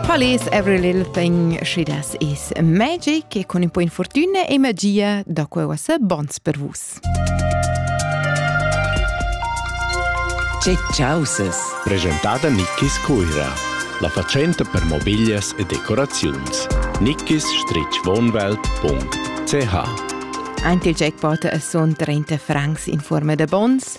Palais every little thing she does is magic e con un po' infortuna e magia da quella sa bons per vus. Cecciauses. Presentada Nickis Cuira, la facenta per mobiglias e decoraziuns. nickis-wohnwelt.ch Anti il jackpot son 30 francs in forma da bons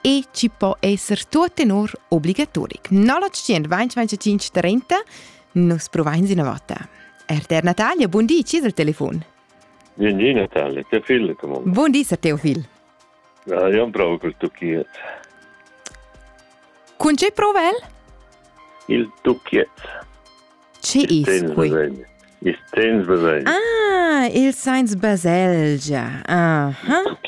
e ci può esser tutto in ur obbligatoric. Non lo 125 30 Nus provains una volta. RTR Natalia, buon dì, ci dal telefon. Buon dì Natalia, Teofil, come Buon dì, Sir Teofil. Ja, io provo col tucchiet. Con ce prova el? Il tucchiet. Che is quei? Il Sens Baselgia. Ah, il Sens Baselgia. Aha.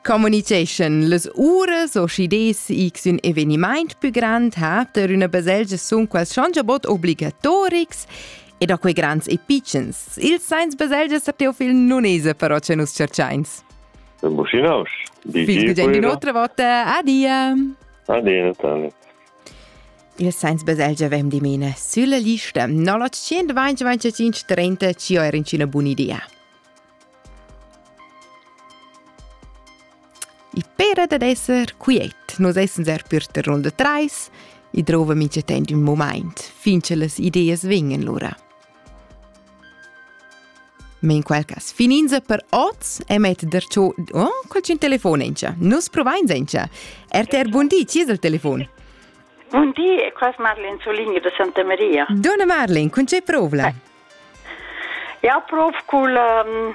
Communication. Las uras o schides x un evenimaint più grand ha per una baselgia sun quels schongiabot obligatorics e da quei grands e pitschens. Il Sens Baselgia sa Teofil non esa però che nus cerchains. Buschinaus. Bis in un'altra volta. Adia. Adia, Natalia. Il sains baselgia avem dimena sülla lista 925 ci ho er incina bun'idea. I pera dad esser quiet, nus essens er per ter runda trais, i drova mincha temp ün moment, fin che las ideas vegnan lura. Men quel cas fininza per oz e met der cho oh, qualcun telefon encha. Nus provain encha. RTR Bundi, ci es il telefon? Bundi, è qua Marlene Soligni de Santa Maria. Donna Marlene, con c'è provla? Ja, prof cul um,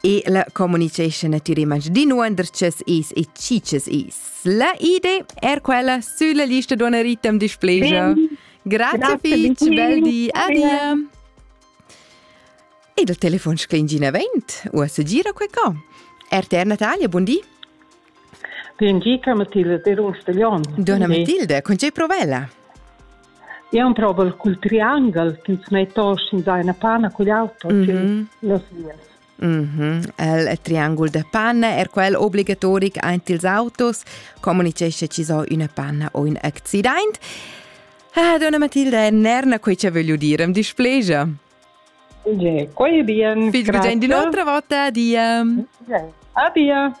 E la communication a tür image d'inuandrchas is e cicas is. La idee er quella sulla lista d'una ritem displegia. Grazie fitch, bel di, adia. E dal telefon sclingina vent, uossa gira quei co. RTR Natalia, buon di. Dunna Matilde, con tgei provela? Io un provel cul triangle ch'ins metta oss in zaina panna cugl auto mm -hmm. las vias. Mm -hmm. Il triangul de panna è quel obligatoric ant ils autos, comunicesce ci so una panna o un accident. Ah, donna Matilde, è nerna quei che voglio dire, am displegia. Quei ei bien. Viel Grüezi di l'otra volta, Adia. Adia.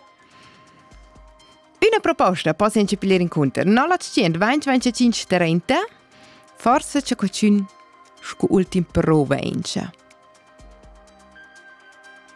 Üna proposta possa incepir inconter 0900 2025 30 forse c'è qualcun scu ultim prova encia.